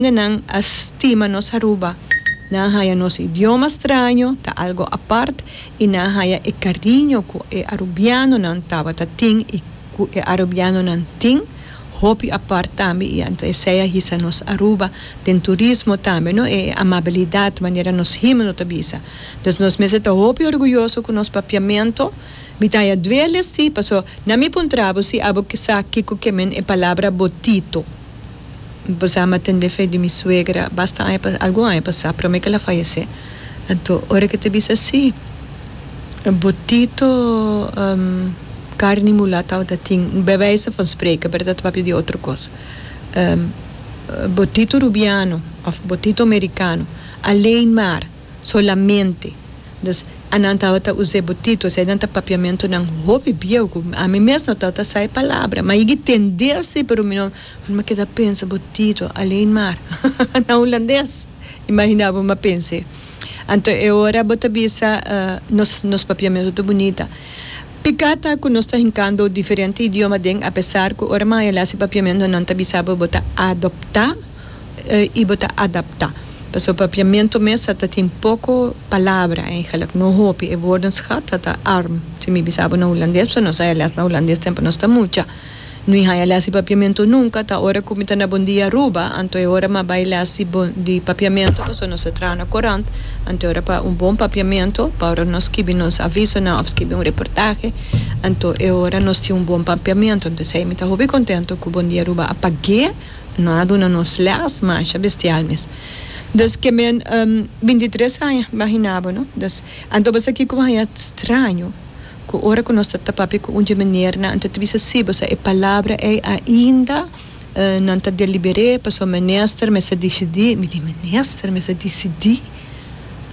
Holandenan a stima nos Aruba. Nan haya nos idioma straño ta algo apart y nan haya e cariño cu e Arubianonan tabata tin y cu e Arubianonan tin, hopi apart tambe y anto esey a hisa nos Aruba den turismo tambe no e amabilidad manera nos himno ta bisa. Dus nos mester ta hopi orguyoso cu nos papiamento. Mi ta haya duele si, paso nan mi puntra bo si abo sa kico ke men e palabra botito. Basa ma tende fe di mi suegra basta aña pa algun aña pasa prome ke el a fayesé. Anto ora ke ta bisa así botito karni mulá tabata tin be wijze van spreken berdad papia di otro kos botito rubiano of botito merikano alén maar. Solamente. Dus a nan tabata us'é botito, esei nan ta papiamentunan hopi bieu ku ami mes no tabata sa e palabra. Mi a yigi tendé así, pero mi no, mi a keda pensa, botito, alén mar. Na hulandes, imaginá bo mi a pens'é. Anto e ora bo ta bisa nos, nos papiamentu ta bunita. Piká ta ku nos ta hinkando diferente idioma den, apesar ku ora maya el a hasi papiamentu nan ta bisa bo, bo ta adoptá. y bo ta adapta. Pasobra Papiamento mes a ta tin poco palabra eigenlijk, no hopi. E woordenschat a ta arm, si mi bisa bo na Hulandes, pasobra nos haya les na Hulandes tempo nos ta mucha. No i haya les di Papiamento nunca, ta ora cu mi ta na Bon Dia Aruba, anto e ora m'a bay les di Bon, di Papiamento, pasobra nos ta traha na corant, anto e ora pa un bon Papiamento, pa ora nos skibi nos avisonan of skibi un reportahe, anto e ora nos tin un bon Papiamento. Anto esey mi ta hopi contento cu Bon Dia Aruba a pag'é. No a duna nos lès masha bestial mes. Dus ke men binti tres aña bo a hinabo no. Dus anto bo sa kiko bo haña straño ku ora ku nos ta tapa papia ku un dje meneer nan ta bisa si bo sa e palabra ei ainda nan ta deliberé paso minister mester disidí. Mi di minister mester disidí?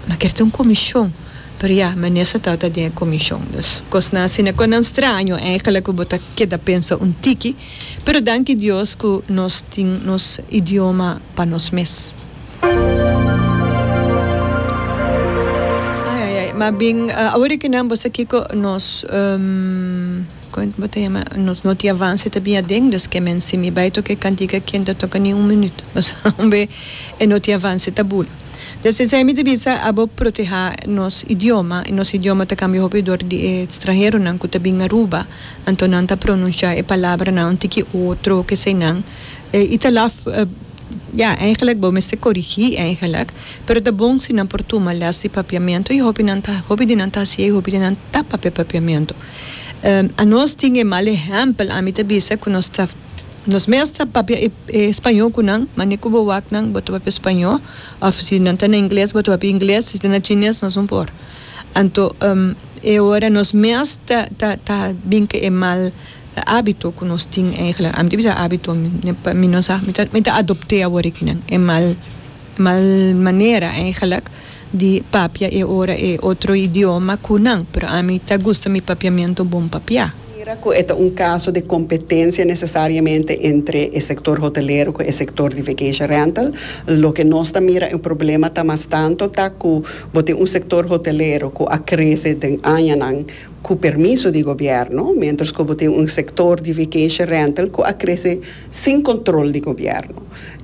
Mi a kere ta un komishon. Pero ya minister tabata den e komishon. Dus kosnan asina kos nan straño, èigelik ku bo ta keda pensa un tiki. Pero danki Dios cu nos tin nos idioma pa nos mes. Ai ai ai, mas bien awor que nan bo sa kico nos como bo ta yama nos no tin avance ta bin aden dus que men si mi bay toca e cantica aki ta toca ni un minuto pasobra un bay e no tin avance ta bulu dus esey mi ta bisa abo proteha nos idioma y nos idioma ta cambia hopi dor di e stranheronan cu ta bin Aruba. Anto nan ta pronuncia e palabranan un tiki otro kesey nan y ta laf ya eigenlijk bo mester corigi eigenlijk pero ta bon si nan por tuma les di papiamento y hopi nan ta hopi di nan ta haciey hopi di nan ta papia papiamento anos tin e mal ehempel ami ta bisa cu nos ta nos mes ta papia e e spaño cu nan mane cu bo wak nan bo ta papia spaño of si nan ta na ingles bo ta papia ingles si ta na chines nos no por anto. E ora nos mes ta ta ta bin cu e mal abito cu nos tin eigenlijk, ami ta bisa abito, pa mi no sa, mi ta mi ta adopte awor aki nan e mal e mal manera eigenlijk di papia e ora e otro idioma cu nan, pero ami ta gusta mi papiamento bon papia. mira cu e ta un caso de competencia necesariamente entre e sector hotelero cu e sector di vacation rental. Loke nos ta mira e problema ta mas tanto ta cu bo tin un sector hotelero cu a crece den añanan cu permiso di gobierno, mientras cu bo tin un sector di vacation rental cu a crece sin control di gobierno.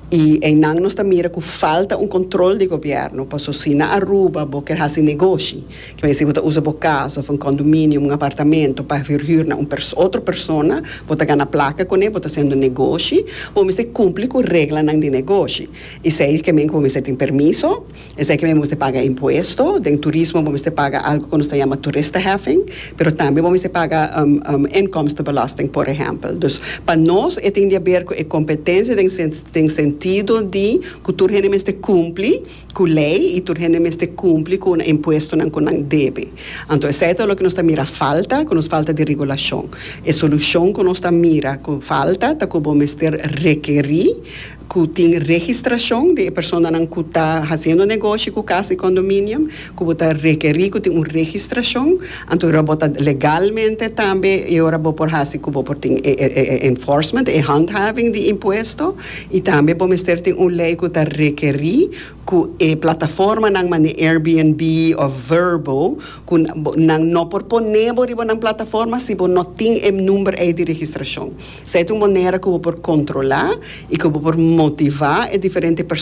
Y einan nos ta mira cu falta un control di gobierno, pasobra si na Aruba bo ker haci negoshi, Kiba yesi bo ta usa bo kas of un kondominio, un apartamento pa verhür na un otro persona, bo ta gana plaka kuné, bo ta hasiendo negoshi, bo mester kumpli ku reglanan di negoshi. Esei ke men ku bo mester tin permiso, esei ke men bo mester paga impuesto, den turismo bo mester paga algu ku nos ta yama toeristeheffing, pero tambe bo mester paga inkomstebelasting por ehèmpel. Dus pa nos e tin di haber ku e kompetensia den sentido di ku tur hende mester kumpli. Cu ley y tur hende mester cumpli cu un impuestonan cu nan debe. Anto esey ta loke nos ta mira falta, cu nos falta di regulacion. E solucion cu nos ta mira cu falta ta cu bo mester rekeri cu tin registracion di e personanan cu ta haciendo negoshi cu cas di condominium, cu bo ta rekeri cu tin un registracion, anto e ora bo ta legalmente tambe e ora bo por haci cu bo por tin e enforcement, e handhaving di impuesto. Y tambe bo mester tin un ley cu ta requeri cu e plataformanan manera Airbnb of Vrbo cu nan no por pone bo riba nan plataforma si bo no tin e number ey di registracion. Esey ta un manera cu bo por controla y cu bo por motiva e diferente.